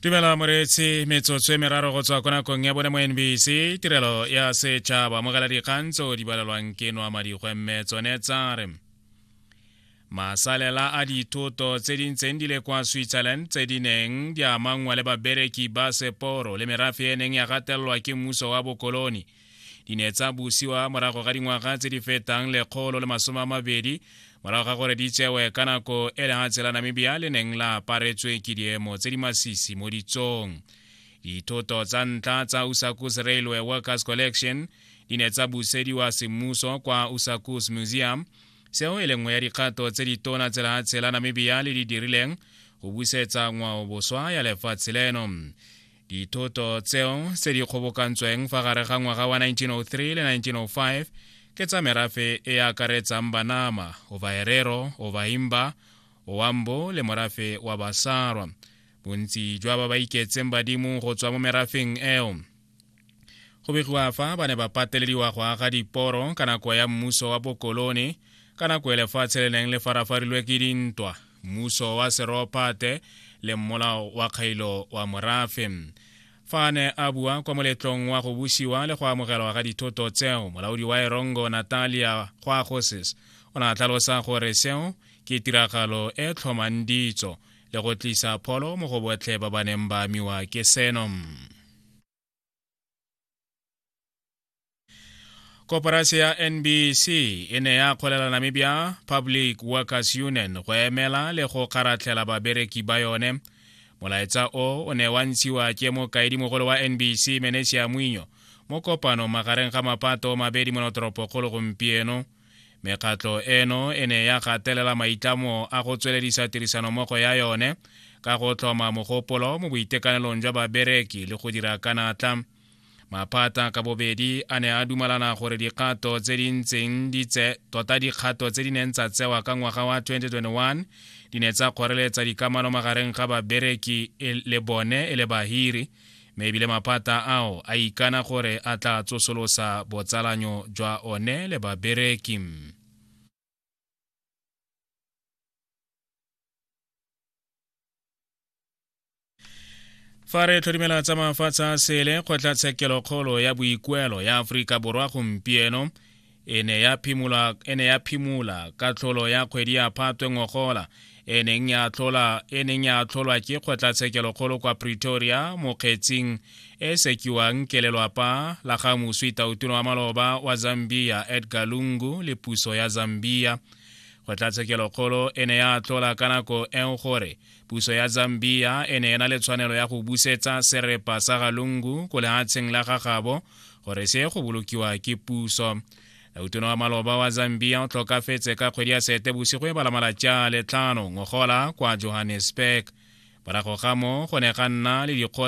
tumelo moreetsi metsotso e meraro go tswa ko nakong ya bone mo nbc tirelo ya setšhaba mogela dikgang tso di balelwang ke noa madikgwe mme tsone tsa re masalela a dithoto tse di ntseng di le kwa switzerland tse di neng di amangwa le babereki ba seporo le merafe e neng ya gatelelwa ke mmuso wa bokoloni di ne tsa busiwa morago ga dingwaga tse di fetang lekgolo le masome a mabedi morago ga gore di tsewe ka nako e lehatshe la namibia le neng la aparetswe ke diemo tse di masisi mo ditsong dithoto tsa ntlha tsa usakus railway workers collection di ne tsa busediwa semmuso kwa usakus museum seo e lengwe ya dikgato tse ditona tse lehatshe la namibia le di dirileng go busetsa ngwao boswa ya lefatshe leno dithoto tseo tse di kgobokantsweng fa gare ga ngwaga wa 1903 le 1905 ke tsa merafe e akaretsang banama ovaherero ovahimba owambo le morafe wa basarwa bontsi jwa ba ba iketseng badimo go tswa mo merafeng eo go begiwa fa ba ne ba patelediwa go aga diporo ka nako ya mmuso wa bokolone ka nako e lefatshe le neng le farafarilwe ke dintwa mmuso wa seropate le mmolao wa kgailo wa morafe fa a ne a bua kwa moletlong wa go busiwa le go amogelwa ga dithoto tseo molaodi wa erongo natalia gwagosis o ne a tlhalosa gore seo ke tiragalo e tlhomang ditso le go tlisa pholo mo go botlhe ba ba neng ba amiwa ke seno koporase ya nbc e ne ya kgolela namibia public workers union go emela le go kgaratlhela babereki ba yone molaetsa o o ne wa ntshiwa ke mokaedimogolo wa nbc menesia mwinyo mo kopano magareng ga mapato mabedi monotoropokgolo gompieno mekgatlo eno e ne ya gatelela maitlamo a go tsweledisa tirisanommogo ya yone ka go tlhoma mogopolo mo boitekanelong jwa babereki le go dira ka natla maphata ka bobedi a ne a dumalana gore dikgato tse di ntseng di tse tota dikgato tse di neng tsa tsewa ka ngwaga wa 2021 di ne tsa kgoreletsa dikamano magareng ga babereki e le bone e le bahiri mme ebile maphata ao a ikana gore a tla tsosolosa botsalanyo jwa one le babereki fa re tlhodimela tsa mafatshe a sele kgotlatshekelokgolo ya boikuelo ya aforika borwa gompieno e ne ya phimola e ne ya phimola ka tlholo ya kgwedi ya phatwe ngogola e neng ya tlhola e neng ya tlholwa ke kgotlatshekelokgolo kwa pretoria mo kgetsing e sekiwang ke lelwapa la ga moswi tautuno wa maloba wa zambia edgar lungu le puso ya zambia kgotlatshekelokgolo e ne ya tlhola ka nako eo gore puso ya zambia e ne e na le tshwanelo ya go busetsa serepa sa ga lungu ko lehatsheng la ga gabo gore se go bolokiwa ke puso utona wa maloba wa zambia o tlhokafetse ka kgwedi ya sete bosigo e balamala tša letlhano ngogola kwa johannesburg morago ga mo go ne ga nna le dikgotsa